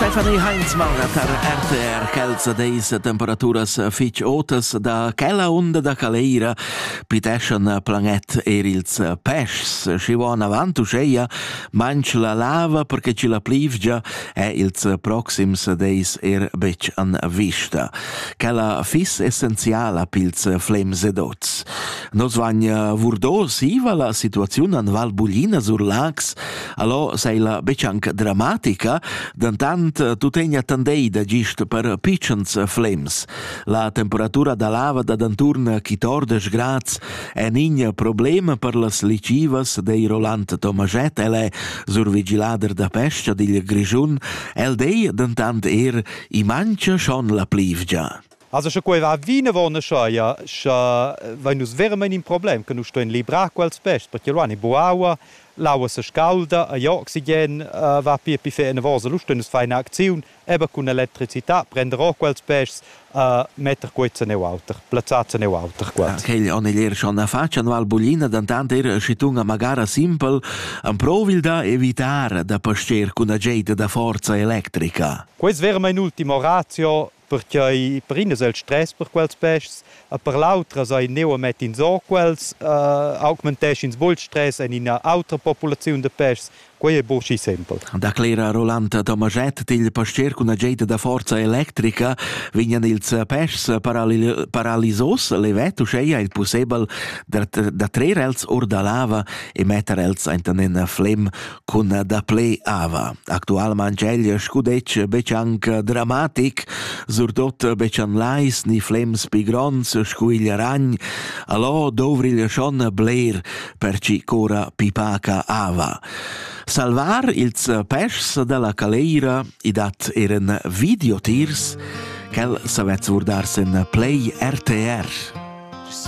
Stefanie Heinz marga tar RTR Celsa deis temperaturas fich otas da quella unda da Caleira piteschan planet er ils peschs. Schi vo avant uscheia manch la lava perché chi la plivgia è ils proxims deis er betg an vista. Quella fis essenziala pils flems ed oz. Nos vagn vurdo siva la situaziun an Val Buglina sur Lax Allò sei la betschanca dramatica, dentant eh, tuttegna tandei da gist per pitschens flems. La temperatura da lava da d'anturn quitordisch grads è in problem per las licivas dei Roland Tomaget, el è survigilader da pesca digl Grischun, el dei dentant er i mancha schon la plivgia. Also sche quei va vinavon, scha vein nus veramein in problem, che nus stuein librar quels pests, perché lu han i bu aua, l'aua se scaulda, e igl oxigen va pia pli fe enavos, e lu stuein nus far ina acziun, eben cun electricità, prender ora quels pests, metter quei ceneu auter, plazzar ceneu auter qua. Quegl on igl er schon a fatscha anual buglina, dentant er schitung a magara simpel, emprovil da evitar da pascher cun ageita da forza electrica. Quei es veramein ultimo ratio perquai perinas el stress per quels peschs e per l'autra sai neu a metter insoquels uh, augmentesch ins bol stress en ina autra populaziun de peschs quei è buc sempel declera Rolanda Tomaschett dil pastier cun ageta da forza electrica vignan ils peschs parallel, paralisos levet uscheia il possibel da, da trer els or da lava e metter els enten in flem Cun dapli ava. Actualmain geglia scudetg betg anc dramatic, surtut betg en lais ni flems pi gronds sco igl ragn. Allò dovrigl schon bler per ci cora pipaca ava. Salvar ils peschs dalla caleira i dat eran videotiers, quel savez vurdars en Play RTR.